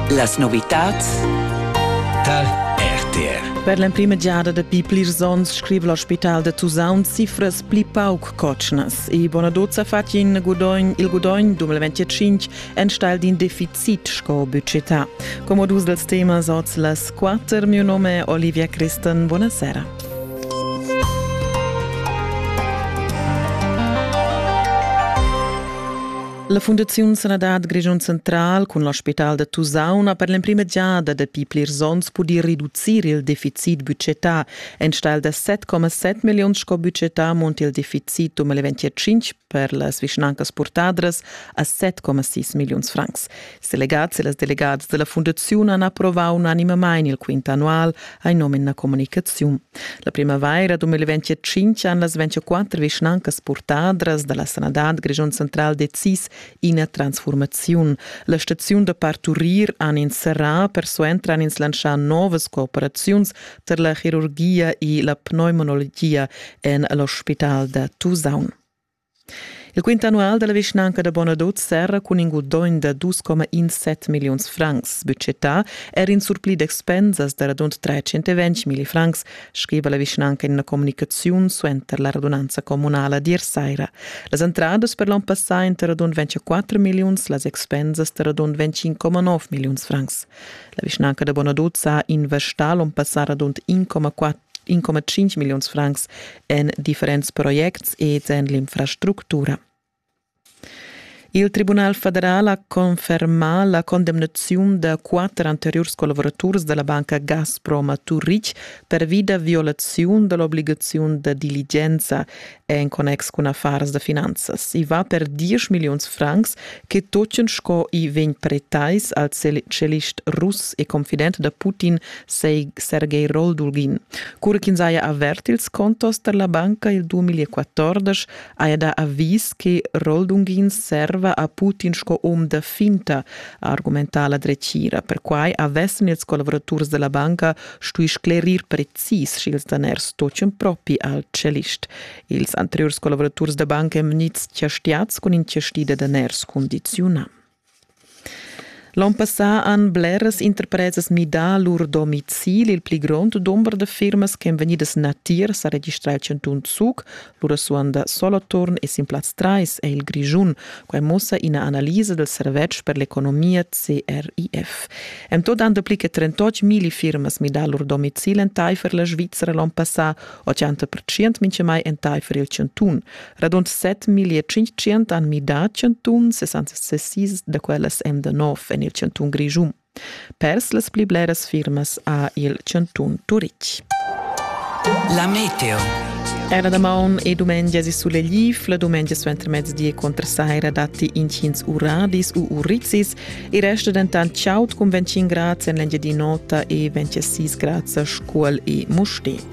Las novitads tar RTR. Per l'emprima giada dapi plirs onns scriva l'ospital da Tusaun cifras pli pauc cotschnas e Bonadot sa fatg in gudogn, il gudogn 2025 enstagl d'in deficit sco budgetà. Come dus dels temas oz las quatter, mio nome è Olivia Christen, buonasera. La Fundaziun Sanadad Grischun Central cun l'ospital da Tusaun ha per l'emprima giada dapi plirs onns pudì reducir il deficit budgetà. Enstagl da 7,7 milliun sco budgetà monta il deficit 2025 per las vischnancas purtadras a 7,6 milliuns francs. Ils delegats e las delegads dalla fundaziun han approvau unanimamain il quint annual a in nomen na communicaziun. La primavaira 2025 han las 24 vischnancas purtadras dalla sanadad Grischun central decis ina transformaziun. La staziun da parturir han ins serrà, persuenter han ins lantschà novas cooperaziuns per la chirurgia e la pneumonologia en l'ospital da Tusaun. Il quint annual da la vischnanca da Bonadot serra cun in gudogn da 2,17 milliuns francs budgetà er in surpli d'expensas da radund 320 milli francs, scriva la vischnanca in ina communicaziun suenter la radunanza communala d'ier saira. Las entradas per l'onn passà inter radund 24 milliuns, las expensas da radund 25,9 milliuns francs. La vischnanca da Bonadot ha investà l'onn passà radund 1,4 1,5 milliuns francs en differents projects ed en l'infrastructura. Il Tribunal federal ha confermà la condemnaziun da quatter anteriurs collavuraturs della banca Gazprom a Turich pervi da violaziun dell'obligaziun da diligenza en connex cun affars da finanzas. I va per 10 milliuns francs che tochen sco i vegn pretais al celist russ e confident da Putin Sergei Roldulgin. Cura ch'ins haja avert ils contos per la banca il 2014 haja dà avis che Roldungin serva a Putin sco um da finta, ha argumentà la dretgira. Perquai avessan ils collaboraturs della banca stui sclerir precis sch'ils daners toccan propi al cellist. Ils anteriurs collaboraturs da banca emnids chastiads cun in chasti da daners condiziunà. L'on passà han bleras interpresas midà lur domicil. Il pli grond dumber da firmas ch'èn vegnidas natiers ha registrà il chantun Zug Lura suonda Soloturn e sin plaz trais è il Grischun. Quai mussa ina analisa dal servetsch per l'economia CRIF. En tot han dapli che 38 mili firmas midà lur domicil entaifer la Svizra l'onn passà, 80% mintgamai entaifer il chantun. Radund 7.500 han midà chantun, 66 da quellas èn da nov en il chantun Grischun. Pers las pli bleras firmas ha il chantun Turitg. La meteo. Era da maun e dumengia si sulegliv, la dumengia suentermezdi contra saira datti intgins uradis u urizzis, il resto dentant chaud cun 25 grad en l'Engiadin'Ota e 26 grad a Scuol e Mustér.